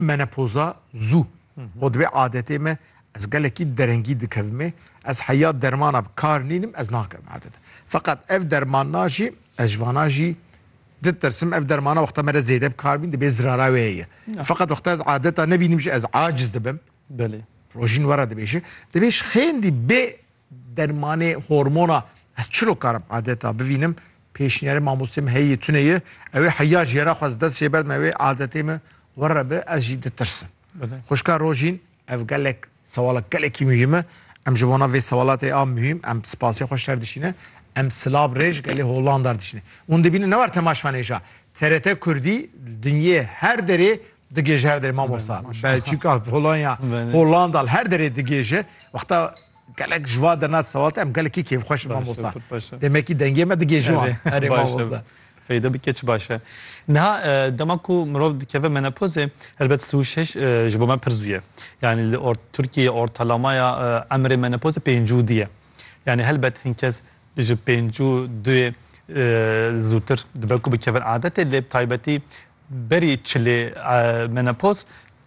Menopoza zû û divê adetê me ez gelekî derengî dikevimê, ez heya dermana bi kar nînim ez nakim adete. Feqet ev dermanna jî ez ji vana jî ditirsim ev dermana wexta me re zêde bi kar bîn dibê zirara wê heye. Feqet wexta ez adeta nebînim jî ez aciz dibim. Belê. Rojîn were dibêje. Dibê ji xêndî bê Dermanê hormona ez çilo karim adeta bivînim pêşniyarê mamostê min heyî tune ye ewê heya jî hera xwez dest jê berdime wê adetê min wir re bi ez jî ditirsim. Xwişka Rojîn ev gelek sewala gelekî muhîm e em ji bona vê sewalatê a muhîm em spasê xwe ji ter dişîne em sila bi rê ji gelê Hollanda re dişîne. Hûn dibînin ne war tema ji van hêja TRT Kurdî li dinyê her derê Digêje her derê mamosta. Belçîka, Polonya, Hollanda li her derê digêje. Wexta gelek ji va derna sewalta em gelekî kêfxweş in mamosta. Demekî dengê me digêje wan. Erê mamosta. Feyda bike çi baş e. Niha dema ku mirov dikeve menopozê helbet si û şeş ji bo me pir zû ye. Yanî li Tirkiyeyê ortalamaya emrê menopozê pêncî û du ye. Yanî helbet hin kes ji pêncî û duyê zûtir dibe ku bikevin adetê lê bi taybetî Berî çilê menopoz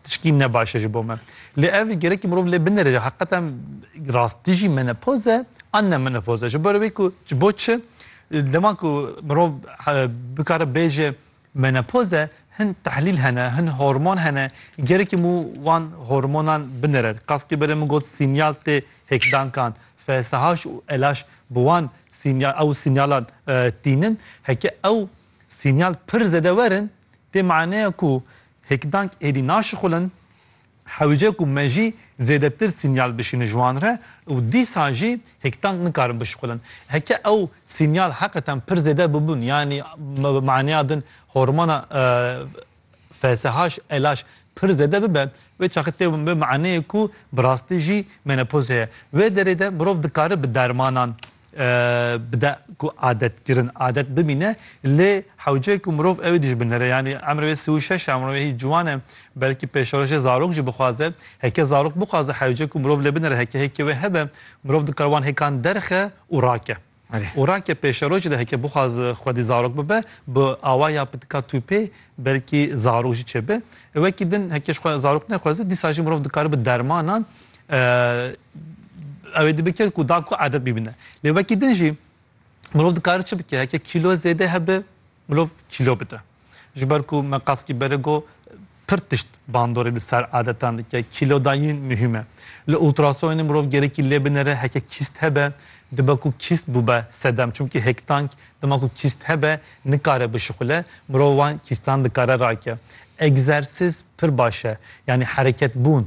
tişkî ne baş e ji bo me. Lê ev gerekî mirov lê binêre ji heqetan rastî jî menopoz e an ne menopoz e. Ji ber wê ku ji bo çi dema ku mirov bikare bêje menopoz e hin tehlîl hene, hin hormon hene gerekî mû wan hormonan binêre. Kaskî berê min got sînyal tê hêkdankan. FSH û LH bi wan sînyal ew sînyalan tînin. Heke ew Sînyal pir zêde werin tê maneya ku hêkdank êdî naşixulin, hewce ku me jî zêdetir sînyal bişînin ji wan re û dîsa jî hêkdank nikarin bişixulin. Heke ew sînyal heqeten pir zêde bibûn yanî bi maneya din hormona. Felsehaş, elaş, pir zêde bibe, wê çaxê tê wê maneyê ku bi rastî jî menopoz heye. Wê derê de mirov dikare bi dermanan bide ku adetkirin adet bimîne lê hewce ku mirov ew ê dijbinere. Yanî emrê wê sî û şeş e, emrê wê hî ciwan e. Belkî pêşerojê zarok jî bixwaze. Heke zarok bixwaze hewce ku mirov lê binere heke hêkê wê hebe, mirov dikare wan hêkan derxe û rake. û rake pêşerojê de heke bixwaz xwedî zarok bibe bi awa ya pitika tûpê belkî zarok jî çêbe. Wekî din heke ji xwe zarok nexweze dîsa jî mirov dikare bi dermanan ew ê dibike ku da ku edet bîbine. Lê wekî din jî mirov dikare çi bike heke kîlo zêde hebe, Mirov kîlo bide. Ji ber ku me qaskî berê got, pir tişt bandorê li ser adetan dike. Kîlodayîn muhîm e. Li ultrasonê mirov gerekî lê binêre heke kîst hebe, dibe ku kîst bûbe sedem. Çimkî hêktank dima ku kîst hebe nikare bişixule, mirov wan kîstan dikare rake. Egzersîz pir baş e. Yanî hereketbûn,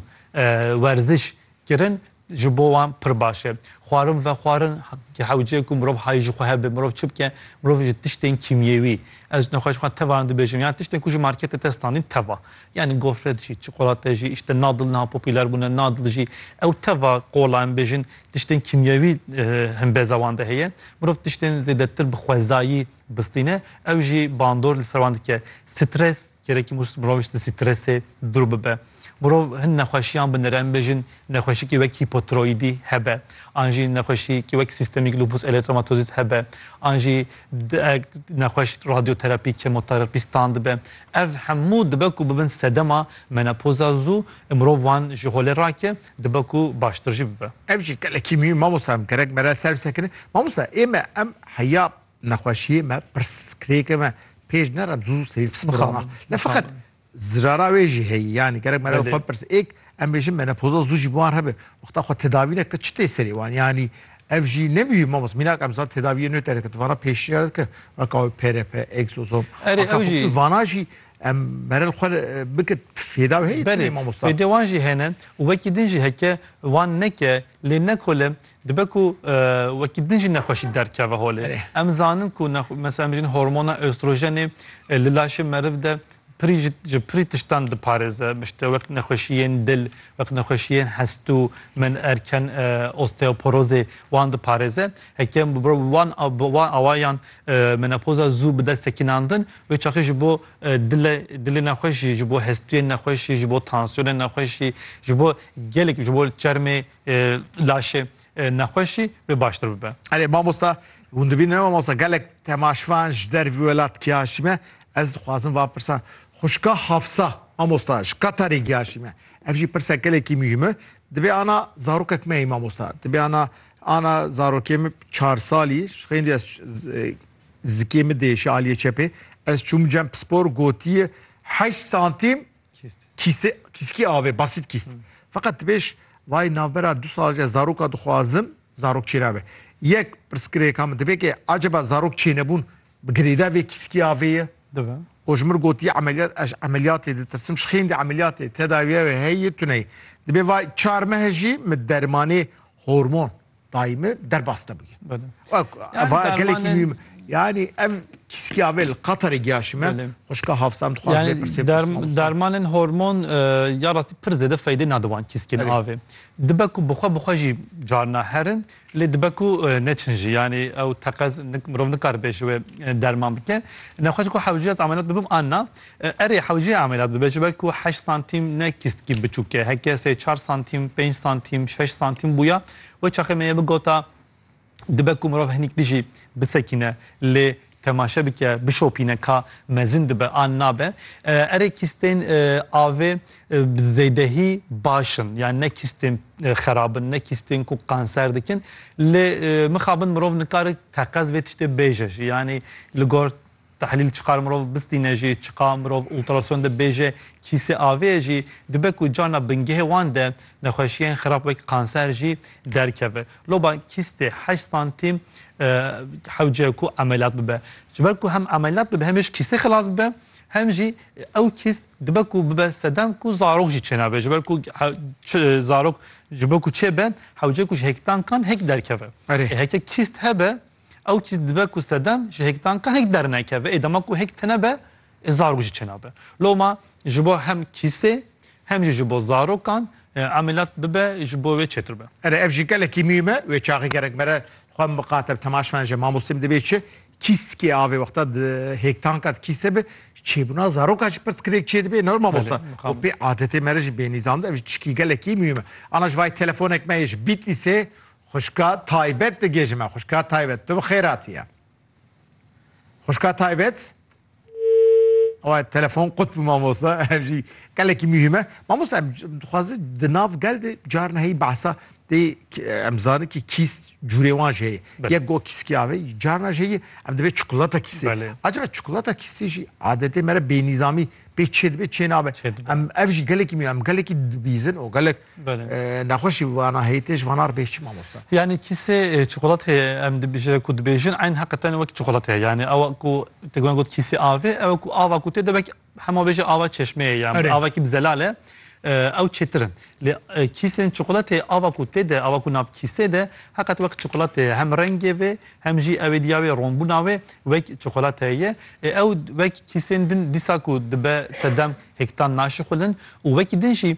werziş Kirin ji bo wan pir baş e. Xwarin vexwarin hewce ku mirov hay ji xwe hebe. Mirov çi bike? Mirov ji tiştên kîmyewî, ez nexweş ji xwe tevan dibêjim, yan tiştên ku ji marketê te standîn teva. Yanî gofret jî, çikolate jî, îşte nadil niha popîler bûne, nadil jî. Ew teva qola em bêjin tiştên kîmyewî himbêza wan de heye. Mirov tiştên zêdetir bi xwezayî bistîne, ew jî bandor li ser wan dike. Stres, Kerekî mirov ji stressê dûr bibe. Mirov hin nexweşiyan bi nirem bêjin nexweşikî wek hîpotiroyîdî hebe an jî nexweşîkî wek sîstemîk lupus erythromatozis hebe an jî diek nexweş radyoterapî kemoterapî stan dibe. Ev hemû dibe ku bibin sedema menopoza zû û mirov wan ji holê rake dibe ku baştir jî bibe. Ev jî gelekî mihîm mamosta em gerek mere ser bi ser kirin. Mamosta ê me em heya Nexweşiyê me pirsgirêkê me pêş nere zû zû serî psixologa. Ne feqet zirara wê jî heyî yanî gerek me xwe pirs êk em bêjin menopoza zû jî bi wan hebe wexta xwe tedavî neke çi tê serê wan yanî ev jî ne mihîm mamos mînak em zan tedaviyê nû te dike tu vana pêşîya dike weka wê PRP, egzozom vana jî em merel xwe bike fêda wê heyî tenê mamosta. Fêdê wan jî hene û wekî din jî heke wan neke lê ne kole Dibe ku wekî din jî nexweşî derkeve holê. Em zanin ku mesela em bijîn hormona östrojenê li laşê meriv de pirî ji ji pirî tiştan diparêze. İşte wek nexweşiyên dil, wek nexweşiyên hestû, min erken osteoporozê wan diparêze. Heke em bi wan bi wan awayan menopoza zû bi dest sekinan din wê çaxê ji bo dile dilê nexweş jî, ji bo hestûyên nexweş jî, ji bo tansiyonên nexweş jî, ji bo gelek ji bo çermê laşê nexweşî wê baştir bibe. Erê mamosta hûn dibînin mamosta gelek temaşvan ji dervî welat kiya şîme ez dixwazim va pirsa xuşka Hafsa mamosta ji Qatarê giya şîme ev jî pirsa gelekî muhîme dibê ana zarokek me yî mamosta dibê ana ana zarokê min çar salî ji xeyndî ez zikê min dê ji aliyê çepê ez çûm cem pispor gotiye heşt santîm Kîskî avê basît kîst. Feqet dibêj vay navbera du salce zaroka dixwazim zarok çêna be. Yek pirsgirêka min dibe ke acaba zarok çênebûn bi girêda vê kîskî avê ye? Dibe. O ji min gotiye emeliyat ez emeliyatê ditirsim ji xêndî emeliyatê tedawiya wê heye tune ye. Dibe vay çar mehe jî min dermanê hormon dayî min derbas te bûye. Eva gelekî mîm yanî ev kîskiyavê li Qatarê giyaşî me xwişka hafsam dixwaz lê pirsê dermanên hormon ya rastî pir zêde feydê nade wan kîskên avê. Dibe ku bixwe bixwe jî carina herin lê dibe ku neçin jî yanî ew teqez mirov nikaribe ji wê derman bike. Nexweş ku hewcîya ez emeliyat bibim an na Erê hewceyê ameliyat bibe ji ber ku heşt santîm ne kîstkî biçûk e. Heke sê çar santîm, pênc santîm, şeş santîm bûya we çaxê me yê bigota dibe ku mirov hinîk dijî bisekîne lê temaşe bike, bişopîne ka mezin dibe an nabe. Erê kîstên avê bi zêdehî baş in yan ne kîstên xerab in, ne kîstên ku kanser dikin lê mixabin mirov nikare teqez vê tiştê bêje jî yanî li gor Tehlîl çiqar mirov bistîne jî, çiqa mirov ultrason de bêje kîsê avêye jî, dibe ku cana bingehê wan de nexweşiyên xirab wek kanser jî derkeve. Loba kîstê heşt santîm hewce ku emeliyat bibe. Ji ber ku hem emeliyat bibe hem jî kîstê xilas bibe, hem jî ew kîst dibe ku bibe sedem ku zarok jî çênabe. Ji ber ku zarok ji bo ku çêbe hewce ku ji hêkdankan hêk derkeve. Erê. Heke kîst hebe. Ew çîz dibe ku sedem ji hêktanka hêk dernekeve. Ê dema ku hêk tine be, ê zarok jî çênabe. Loma ji bo hem kîsê hem jî ji bo zarokan emeliyat bibe ji bo wê çêtir be. Erê ev jî gelekî muhîm e. Wê çaxê gerek mere xwe miqate bi temaş bene ji mamostê min dibê çi kîskê a vê wexta di hêktanka di kîsê be ji çêbûna zarokan jî pirsgirêk çêdibe ne mamosta. Û pê adetê mere jî bênî zand ev jî tişkî gelekî muhîm e. Ana ji vayê telefonek me yê ji Bîtlîsê Xwişka taybet digê ji me. Xwişka taybet tu bi xêratî ye. Xwişka taybet. Ewa telefon qut bi mamosta ev jî gelekî mühim e. Mamosta em dixwaze di nav gel de carna heyî behsa dê em zanî ki kîs cûrê wan jê ye. Yek go kîskî avê carna jê ye em dibê çikolata kîsê. Acaba çikolata kîsê jî adetê me re bênîzamî pê çê dibe çê nabe. Em ev jî gelekî mî em gelekî dibîzin û gelek Nexweşî vana heytê ji vana re bêhs çi mamosta? Yanî kîsê çikolateyê em dibêjin ku dibêjin eyn heqê tenê wek çikolate ye. Yanî ew ku te guhên got kîsê avê ew ku ava ku tê de wek hema bêje ava çeşmeyê ye an avakî bi zelal e ew çêtir in. Lê kîsên çikolateyê ava ku tê de ava ku nav kîsê de heqet wek çikolate ye. Hem rengê vê hem jî ew êdiya wê ronbûna wê wek çikolate ye. Ê ew wek kîsên din dîsa ku dibe sedem hêktan naşixulin û wekî din jî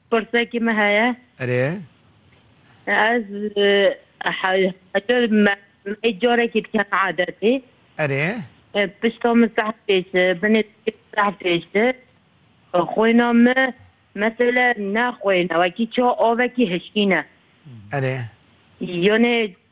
Pirsekî me heye. Erê. Ez me carekî dike adetî. Erê. Pişta min seh pêş e, binê seh pêş e. Xwêna me mesela ne xwêne wekî ça avekî hişkîne. Erê. Yanê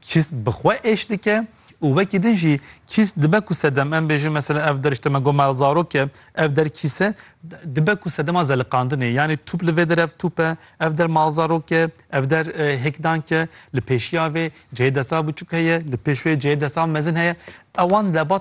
Kîst bi xwe êş dike û wekî din jî kîst dibe ku sedem em bêjin mesela ev der işte me got mal zarok e ev der kîse dibe ku sedema zeliqandinê yanî tûp li vê der ev tûp e ev der mal zarok e ev der e, hêkdank e li pêşiya vê cihê desa biçûk heye li pêş wê cihê desa mezin heye ewan debat